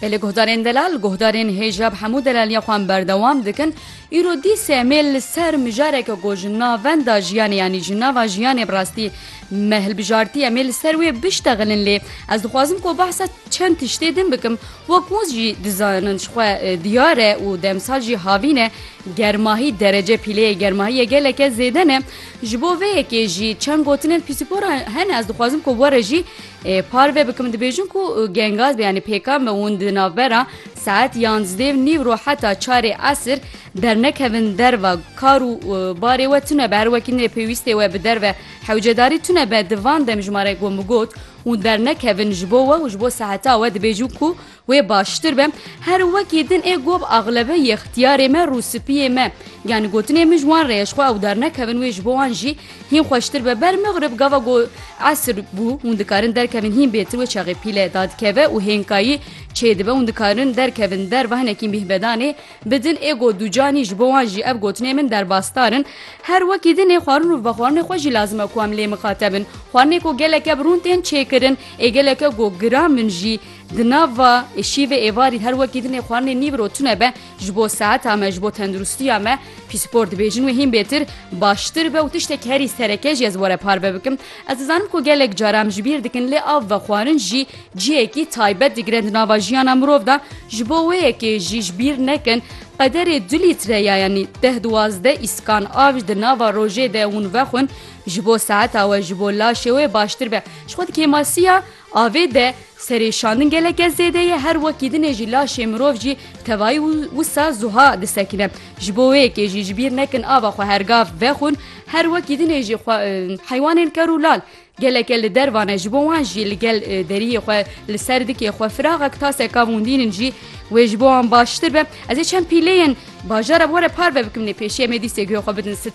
Belê guhdarên delal, guhdarên hêjab hemû delaliya xwe em berdewam dikin. Îro dîsê em ê li ser mijareke ku ji navenda jiyanê yanî ji nava jiyanê bi rastî me hilbijartî em ê li ser wê biştexilin lê ez dixwazim ku behsa çend tiştê din bikim. Wek hûn jî dizanin ji xwe diyar e û demsal jî havîn e germahî derece pîleyê germahiyê geleke zêde ne. Ji bo vê yekê jî çend gotinên pîsîpora hene ez dixwazim ku were jî Parve bikim dibêjin ku gengaz be yanî pêkan be hûn di navbera saet yanzdêv nîv ro heta çarê esir dernekevin derve kar û barê we tune be her wekî nê pêwîstê we bi derve hewcedarî tune be di van dem ji ma re got hûn dernekevin ji bo we û ji bo seheta we dibêjin ku Wê baştir be her wekî din ê gob axlebe yextiyarê me rûsipiyê me. Yani gotinê min ji wan re ye ji xwe ew dernekevin wê ji bo wan jî hîn xweştir be ber mixrib gava ku esir bû hûn dikarin derkevin hîn bêtir wê çaxê pîle dadikeve û hênkayî çêdibe hûn dikarin derkevin derve hinekî mîhbedanê bidin ê got dûcanî ji bo wan jî ev gotinê min derbasdarin her wekî din ê xwarin û vexwarinê xwe jî lazim e ku em lê mixatebin xwarinê ku geleke bi rûn tên çêkirin ê geleke ku giran min jî Di nav va êşî vê êvarî her wekî dinê xwarinê nîv ro tune be ji bo seheta me ji bo tendirustiya me pîspor dibêjin wê hîn bêtir baştir be û tiştek herî sereke jî ez were parve bikim ez dizanim ku gelek cara em ji bîr dikin lê av ve xwarin jî cihekî taybet digire di nava jiyana mirov da ji bo wê yekê jî ji bîr nekin qederê du lître ya yanî deh duwazde îskan av ji di nava rojê de hûn vexwin ji bo seheta we ji bo laşê wê baştir be ji xwe di kêmasiya Avê de serê şandin geleke zêde ye, her wekî dinê jî laşê mirov jî tevayî wisa zuha disekine. Ji bo wê yekê jî ji bîr nekin ava xwe her gav vexwin, her wekî dinê jî xwe heywanên ker û lal geleke li derva ne, ji bo wan jî li gel deriyê xwe li ser dikê xwe firaxek taseka vûndînin jî wê ji bo wan baştir be. Ez ê çend pîleyên bajara bi we re parve bikim lê pêşiya me dîsê guhê xwe bidin sitra.